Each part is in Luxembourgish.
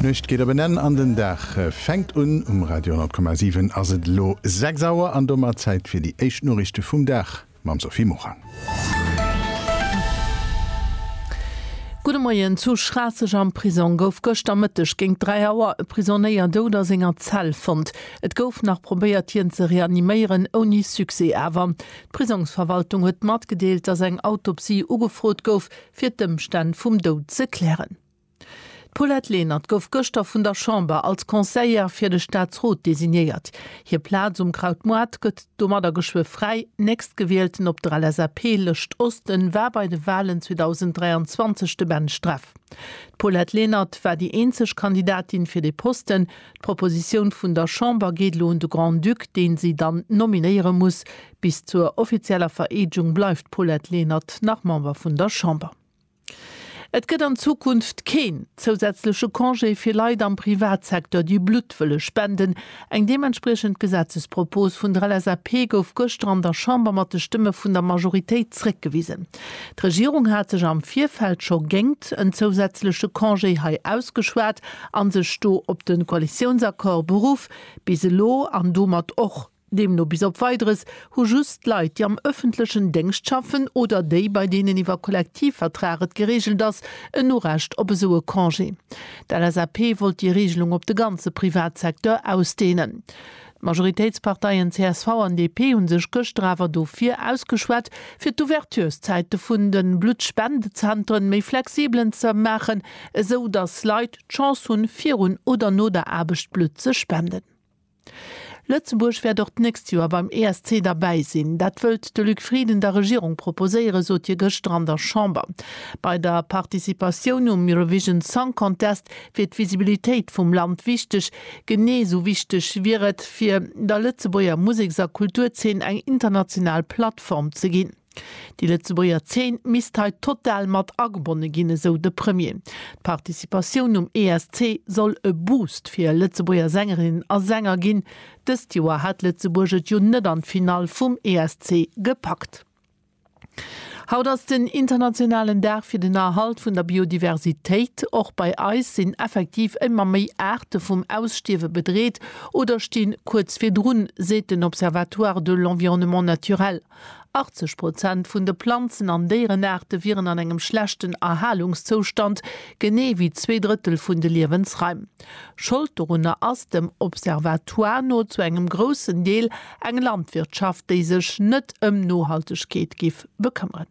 D'Nuecht geet op en Enn an den Dag fänkt un. Um Radio 10,7 ass et elo 6 Auer an domat Zäit fir déi éischt Noriichte vum Dag mam Sophie Morang. Gudde Moien, Zu Schraasseg am Prisong gouf gëschter Mëtteg géint 3 Auer e Prisonéier dout a senger Zell fonnt. Et gouf nach probéiert hien ze reaniméieren, ouni Succès awer. D'Prisongsverwaltung huet matgedeelt, datt eng Autopsie ugefrot gouf. fir d'Ëmstänn vum Doud ze klären. D'Paulette Lenert gouf gëschter vun der Chamber als Conseillère fir de Staatsrot designéiert. Hir Plaz um Kraut Moat gëtt domadder geschwë fräi. Nächstgewielten op der LSAP-Lëscht Oste war bei de Walen 2023 de Ben Streff. D'Paulette Lenert war déi eenzeg Kandidatin fir dee Posten. D'Propositioun vun der Chamber geet elo un de Grand-Duc, dee si dann nominéiere muss. Bis zur offizieller Vereedegung bleift d'Paulette Lenert nach Member vun der Chamber. Et gëtt an Zukunft keen zousätzleche Congé fir Leit am Privatsecteur, déi Blutt wëlle spenden. Eng deementspriechend Gesetzespropos vun der LSAP gouf gëschter an der Chamber mat de Stëmme vun der Majoritéit zréckgewisen. D'Regierung hat sech am Virfeld scho géngt en zousätzleche Congé hei ausgeschwat a sech do op de Koalitiounsaccord beruff. Bis elo, an domat och Deemno bis op Weideres hu just d'Leit, déi am ëffentlechen Déngscht schaffen oder déi, bei deenen iwwer Kollektivvertrag et gereegelt ass, en Urecht op esou e Congé. D'LSAP wollt déi Reegelung op de ganze Privatsecteur ausdehnen. D'Majoritéitsparteien csv an DP hu sech gëschter awer dofir ausgeschwat, fir d'Ouverturszäite vun de Bluttspendezenteren méi flexibelen ze maachen, esou datt Leit d'Chance hunn, virun oder no der Aarbecht Blutt ze spenden. Lëtzebuerg wäert och d'nächst Joer beim ESC derbäi sinn. Dat wëllt de Luc Frieden der Regierung proposéieren, sot hie gëschter an der Chamber. Bei der Participatioun um Eurovision Song Contest wier d'Visibilitéit vum Land wichteg. Genee esou wichteg wier et, fir der Lëtzebuerger Museks a Kulturzeen eng international Plattform ze ginn. Déi Lëtzebuerger Zeen misst hei total mat agebonne ginn, esou de Premier. D'Participatioun um ESC soll e Boost fir Lëtzebuerger Sängerinnen a Sänger ginn. Dëst Joer hat Lëtzebuerg et jo net an d'Finall vum ESC gepackt. Haut ass den internationalen Dag fir den Erhalt vun der Biodiversitéit. Och bei eis sinn effektiv émmer méi Aarte vum Ausstierwe bedreet oder sti kuerz virdrun, seet den Observatoire de l'environnement naturel. 80 Prozent vun de Planzen an Déierenaarte wieren an engem schlechten Erhalungszoustand, genee wéi zwee Drëttel vun de Liewensraim. Schold dorunner ass dem Observatoire no zu engem groussen Deel eng Landwirtschaft, déi sech net ëm Nohaltegkeet giff bekëmmeren.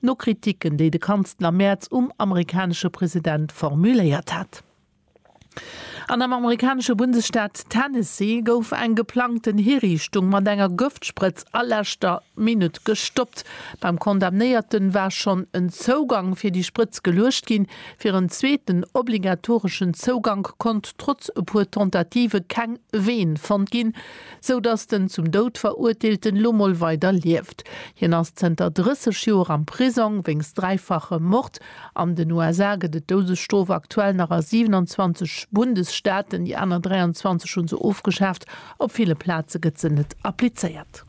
No Kritiken, déi de Kanzler Merz um amerikanesche President formuléiert hat. An am amerikanesche Bundesstaat Tennessee gouf eng geplangten Hiriichtung mat enger Gëftsprëtz a leschter Minutt gestoppt. Beim Condamnéierten war schonn en Zougang fir déi Sprëtz geluecht ginn. Fir en zweeten obligatoreschen Zougank konnt trotz e puer Tentative keng Vene fonnt ginn. sou dass den zum Doud Verurteelten lo mol weider lieft. Hien ass zënter 30 Joer am Prisong wéinst dräifache Mord. An den USA gëtt et d'Doudesstrof aktuell nach a 27 Bundesstaaten, déi aner 23 hu se ofgeschaaft. Op ville Plaze gëtt se net applizéiert.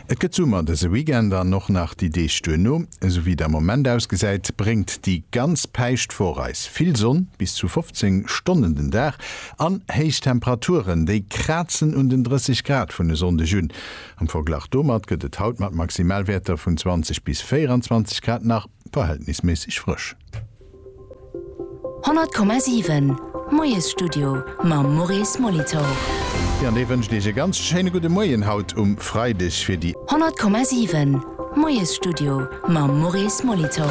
Et gëtt Summer dëse Weekend an och nach déi Deeg duerno. Esou wéi et am Moment ausgesäit, bréngt déi ganz Päischtwoch eis vill Sonn, bis zu 15 Stonnen den Dag. An héich Temperaturen, déi krazen un den 30 Grad vun e Sonndeg un. Am Verglach domat gëtt et haut mat Maximalwäerter vun 20 bis 24 Grad nach verhältnisméisseg frësch. 100,7 Moiesstudio mam Maurice Molitor. Jo, an dee wënscht Iech e ganz schéine gudde Moien haut um Freideg fir déi. 100,7 Moiesstudio mam Maurice Molitor.